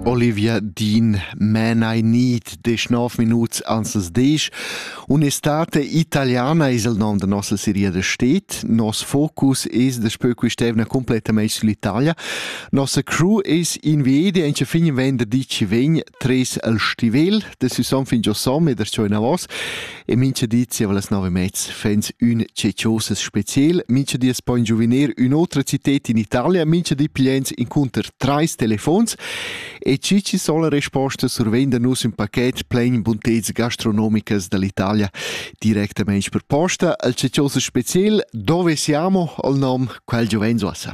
Olivia Dean Man I Need desch nov Minuten ansens desch. Un'estate italiana es il nom da nossa seria da stet. Nos focus es da spö qui stevna completamente sull'Italia. Nossa crew es in viedi anche fin venderdi ci vegn tres al stivel, Decission fin giò som e das giò inavos e mincha di zieva las nove mezs fans ün cecioses speziel, mincha di es po in giuvenil ün'otra cited in Italia, mincha di pigliens incunter trais telefons e cici sola resposta survenda nus ün paquet plain bunteds gastronomicas dall'Italia directamente per posta. Al cecioses speziel dove siamo al nom quel giovens uossa.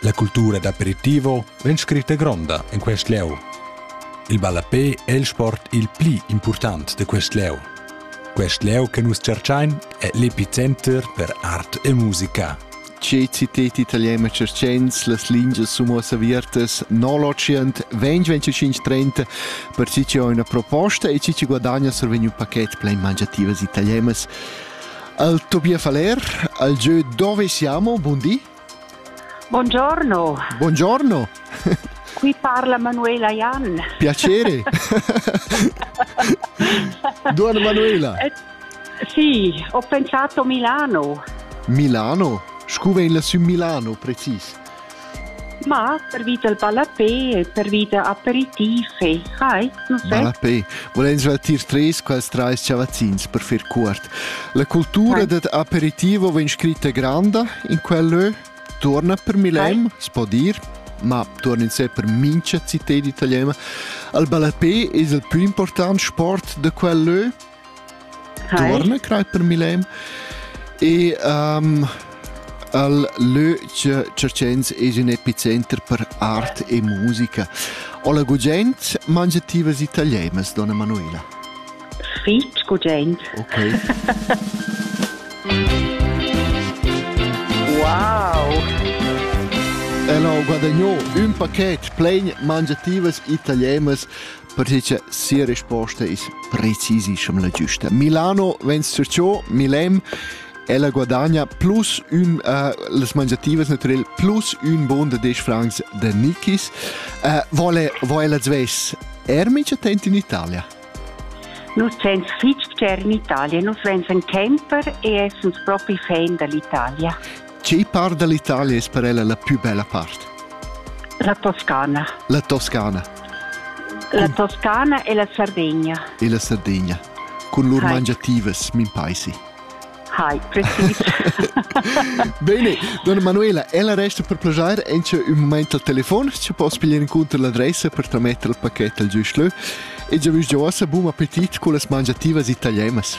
La cultura d'aperitivo vegn scritta gronda en quest lieu. Il ballapé è il sport il pli important de quest lieu. Quest lieu che nus cercain è l'epicenter per art e musica. Tge citet italiana cercens las lingias sun uossa avertas no l'Ocient 2025 per chi chi ho üna proposta e chi chi guadagna survegn un paket plein mangiativas italianas. Al Tobias Faller, al jeu dove siamo, bun di. Buongiorno. Buongiorno. Qui parla Manuela Jan. Piacere. Duan Manuela. Eh, sì, ho pensato Milano. Milano? Scuva in lassù Milano, precis. Ma pervida il ballapè e pervida aperitiv e hai, non so. Ballapè. Volens retir tres quels trais chavazzins per fer cuort. La cultura Hai. dad aperitivo vegn scritta granda in quel lö. Torna per Milem, s'po dir, ma torna in sé per mincha città d'italiana. Il ballapè es il plü important sport de quel lö Tuorna crei per Milem e um, al lö che Cercens es ün epicenter per art e musica. O la gugent mangiativas italianas, donna Manuela? Fitch gugent. Okay. wow! El ho guadagno ün paquet plein mangiativas italianas perché cha sia risposta es precisaschem la giusta. Milano vens sur ciò, Milem, ella guadagna plus un, uh, las mangiativas naturel plus un bon de 10 francs de Nichis. Uh, vole, vole la zves ermic attent in Italia? Nus gens fitg cher in Italia, nus vens en camper e essens propi fan dall'Italia. Tgei part dall'Italia es per ella la più bella part? La Toscana. La Toscana. La Toscana e la Sardegna. E la Sardegna. Con lur Hai. mangiativas, min paisi. Hai, precis. Bene, donna Manuela, ella resta per plagiare encia un moment al telefon, ci posso pigliare incontro l'adressa per tramettere il pacchetto al giusto e già già ossa buon appetit con le mangiativas italianas.